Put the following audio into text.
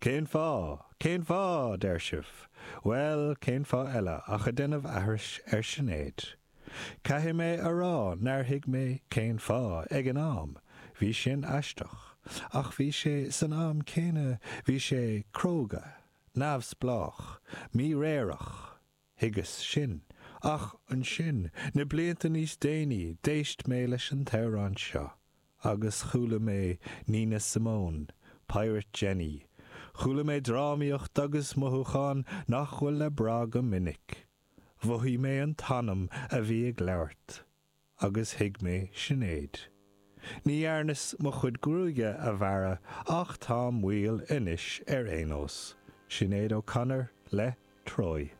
Cén fáth? Cén fáth? a deir sibh. Bhuel, cén fáth eile ach a déanamh aithris ar Shinéad. Caithfidh mé a rá nár thuig mé cén fáth ag an am, bhí sin aisteach, ach bhí sé, san am céanna, bhí sé cróga, neamhspleách, míréireach. Thuigeas sin. Ach ansin, na blianta níos déanaí, d'éist mé leis an amhrán seo. Agus chuala mé Nina Simone, Pirate Jenny. Chuala mé drámaíocht agus mothúcháin nach bhfuil le brath go minic. Mhothaigh mé an t-anam a bhí ag labhairt. agus thuig mé Sinéad. Ní dhearnas mo chuid gruaige a bhearradh ach táim maol anois ar aon nós. Sinéad O'Connor le Troy.